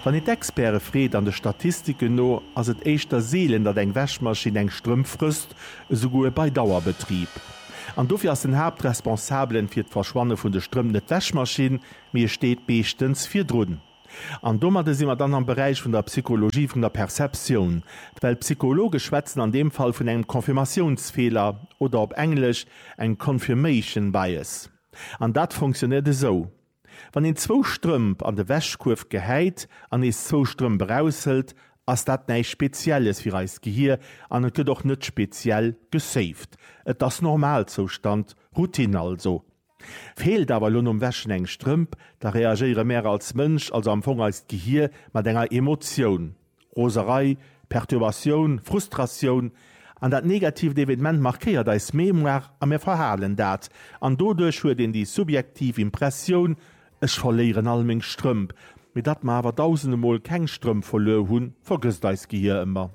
Wann een d'Experte freet, an de Statistiken no ass et éischter seelen, datt eng Wäschmaschinn eng Strëmp frësst, esouguer bei Dauerbetrib. An dofir ass den Haaptresponsabelen fir d'Verschwanne vun de Strëmp net d'Wäschmaschinn, mee e steet meeschtens virdrun. An domadde si mer dann am Beräich vun der Psychologie vun der Perceptioun, well d'Psychologe schwätzen an deem Fall vun engem Confirmatiounsfeeler oder op Englesch eng Confirmation Bias. An dat fonctionnéiert esou. Wann een zwou Strëmp an de Wäschkuerf gehäit an nees zwou Strëmp eraushëlt, ass dat näischt Spezielles fir eist Gehir an et gëtt och net speziell gesaved. Et ass Normalzoustand, Routine also. Feelt awer elo nom Wäschen eng Strëmp, da reagéiere mär als Mënsch, also am Fong eist Gehir, mat enger Emotioun. Roserei, Perturbatioun, Frustratioun an dat negatiivt Evenement markéiert eis Mémoire a mir verhalen dat. An doduerch huet een déi subjektiv Impressioun, ech verléieren all meng Strëmp. Mee datt mer awer dausende Mol keng Strëmp verluer hunn, vergësst eist Gehier ëmmer.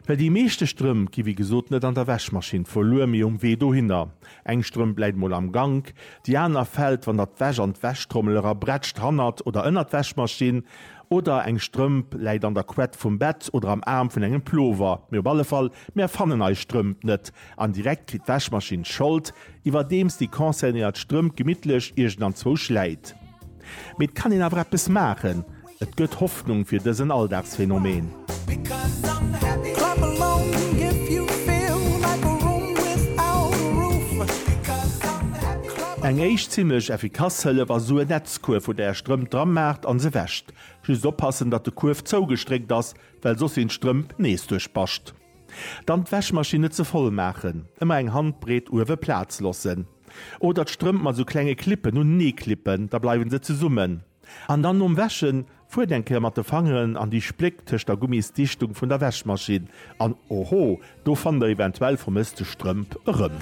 Well déi meeschte Strëmp gi wéi gesot net an der Wäschmaschinn verluer, mee um Wee dohinner. Eng Strëmp läit mol am Gank, déi aner fält, wann der d'Wäsch an d'Wäschtrommel era brätscht, hannert oder ënnert d'Wäschmaschinn. Oder eng Strëmp läit an der Quett vum Bett oder am Aarm vun engem Plover. Mee op alle Fall, mär fannen eis Strëmp net. An direkt kritt d'Wäschmaschinn d'Schold, iwwerdeems déi concernéiert Strëmp gemittlech iergendenzwou schläit. Mee et kann een awer eppes maachen. Et gëtt Hoffnung fir dësen Alldagsphenomeen. Eng éischt zimlech effikass Hëllef ass esou en Netzkuerf wou der är Strëmp dra maacht an se wäscht. Just oppassen datt de Kuerf zougestréckt ass, well soss sinn d'Strëmp nees duerchbascht. Dann d'Wäschmaschinn net ze voll maachen, ëmmer eng Handbreet uewe Plaz lossen. Oder d'Strëmp mat esou klenge Clippen unenee klippen, da bleiwen se zesummen. An dann nom Wäschen fuert eng Kéier mat de Fangeren an déi Spléck tëscht der Gummisdichtung vun der Wäschmaschinn an oho, do fannt der eventuell vermësste Strëmp erëm.